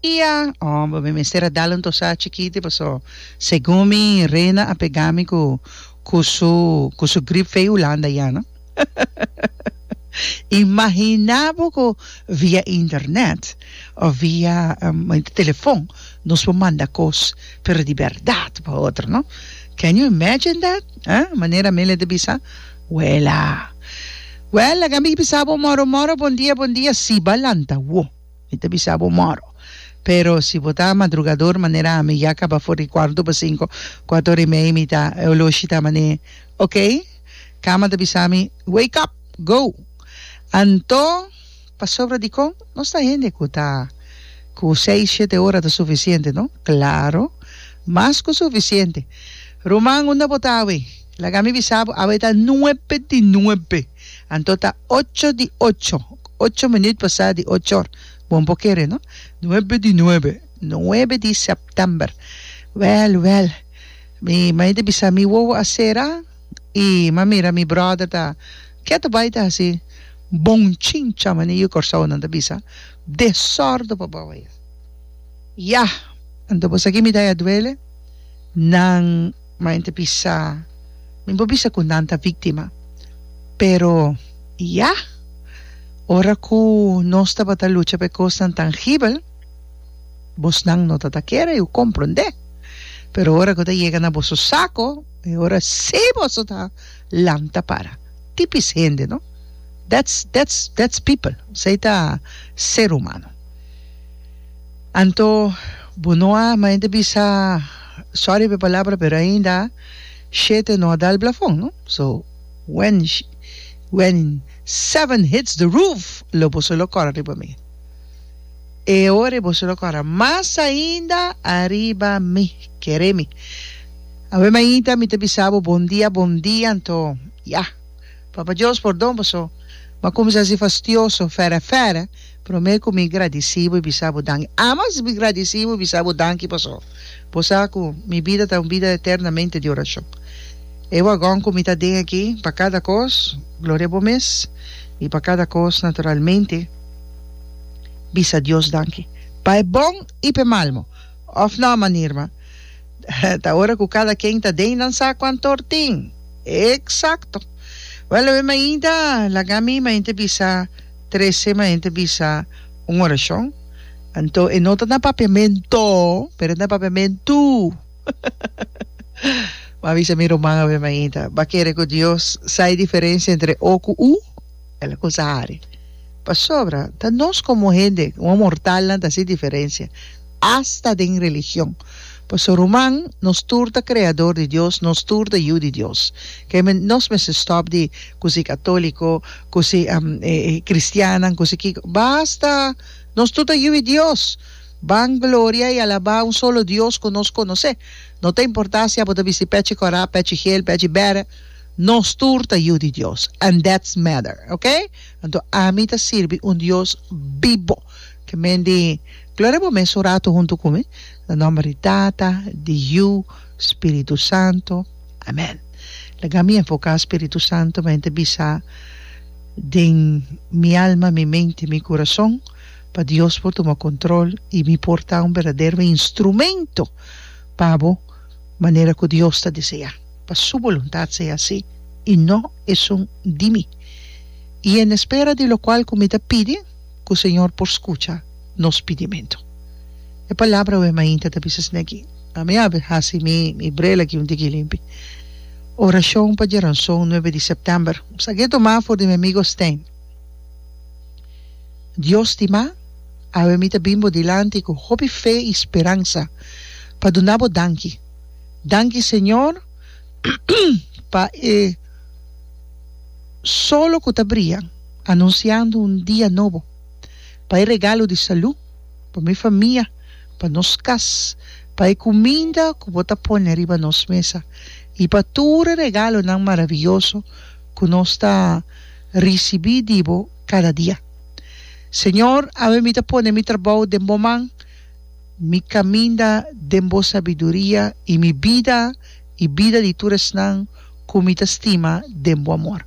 Dia, oh bo me mester a dal un tosá chikiti paso segun mi Rena a pegá mi ku ku su ku su grip fei Hulanda ya no. Imaginá bo ku via internet òf via telefon nos por manda kos pero di bèrdat pa otro no. Can you imagine that? Manera Amelia ta bisa. Wela. Wela, ga mi bisa bo moro moro bon dia bon dia si ba lanta wo. Mi ta bisa bo moro. Pero si bo ta madrugador manera ami ya caba for di cuarto pa cinco, cuato ora y medio mi ta e oloshi ta mane ok. Cama ta bisa mi wake up, go. Anto pasobra di con nos ta hende cu ta cu seis shete ora ta suficiente no? Claro mas cu suficiente. Ruman unda bo ta awe? Laga mi bisa bo, awe ta nuebe di nuebe, anto ta ocho di ocho, ocho minuut pasá di ochor, bon por kere no, nuebe di nuebe, nuebe di september, wèl wèl mi mai ta bisa mi wowo a sera i m'a mira mi bròder ta ketu bai ta hasi bon chincha mane yu kòrsounan ta bisa, desòrdo pa bou aya, yah! Anto bo sa ki mi ta aya duele? Nan. Ma ente bisa, Mi bo bisa ku nan ta víktima. Pero, ya! Ora ku nos tabata lucha pa e kosnan tangibel, bosnan no ta ta kere, i Bo komprondé. Pero ora ku ta yega na boso sako, e ora sí boso ta lanta para. Tipis hende, no? That's, that's, that's people. Esei ta ser humano. Anto bo no a mainta bisa sorry p'e palabra pero ainda shete no a dal blafon no so when when seven hits the roof lo boso lo cora riba mi e ora e boso lo cora mas ainda ariba mi kere mi awe mainta mi ta bisa bo bon dia bon dia anto ya papa Dios pordon boso m'ha cuminsa si fastioso fera fera Promé ku mi gradisí bo i bisa bo danki. A mas mi gradisí bo i bisa bo danki paso bo sa ku mi bida ta un bida eternamente di orashon. E wagon ku mi ta den aki, pa kada kos, gloria bo mes, i pa kada kos, naturalmente, bisa Dios danki, pa e bon i pa e malmo. Òf nò, man Irma? Ta ora ku kada ken ta den nan sa kuantor tin. Eksakto. Wèl, awor mainta laga mi mainta bisa. Tres sema hende bisa un orashon, anto e no ta na papiamentu, pero e na papiamentu. M'a bisa mi ruman awe mainta, B'a kere ku Dios sa e diferensia entre O ku U? El a konsa hari. Pasobra ta nos komo hende, komo mortalnan ta hasi diferensia. Asta den religion. Paso, ruman, nos tur ta kreador di Dios, nos tur ta yu di Dios. Ke men nos mester stòp di ku si katoliko, ku si kristiannan, ku si kiko. Basta! Nos tur ta yu di Dios. Ban gloria i alabá un solo Dios ku nos konosé. No ta importá si abo ta bisti pèchi kòrá, pèchi hel, pèchi bèra, nos tur ta yu di Dios. And that's matter. Oke? Anto ami ta sirbi un Dios bibo. Kmen di Gloria bo mes un ratu huntu ku mi, na nòmber di Tata, di Yu, Spiritu Santu. Amèn. Laga mi enfoká Spiritu Santu pa e ta bisa den mi alma, mi mente, mi kurason pa Dios por tuma kontrol i mi por ta un berdadero instrumento pa Bo manera ku Dios ta deseá. Pa Su boluntat sea así i no esun di mi. I en espera di lokual ku mi ta pidi. ku Señor por skucha nos pidimentu. E palabra wei mainta ta bisa asina aki. A mi a hasi mi mi brel aki un tiki limpi. Orashon pa Geronson nuebe di sèptèmber. Sa ke toma for di mi amigo Stijn. Dios stima, awe mi ta bin bo dilanti ku hopi fe i speransa pa duna bo danki. Danki Señor pa e solo ku ta bria. anunsiando un dia nobo pa e regalo di salú, pa mi famia, pa nos kas, pa e kuminda ku bo ta pone riba nos mesa i pa tur e regalonan maravioso ku nos ta risibí di bo kada dia. Señor, ami mi ta pone mi trabou den bo man, mi kaminda den bo sabiduria i mi bida i bida di tur esnan ku mi ta stima den bo amor.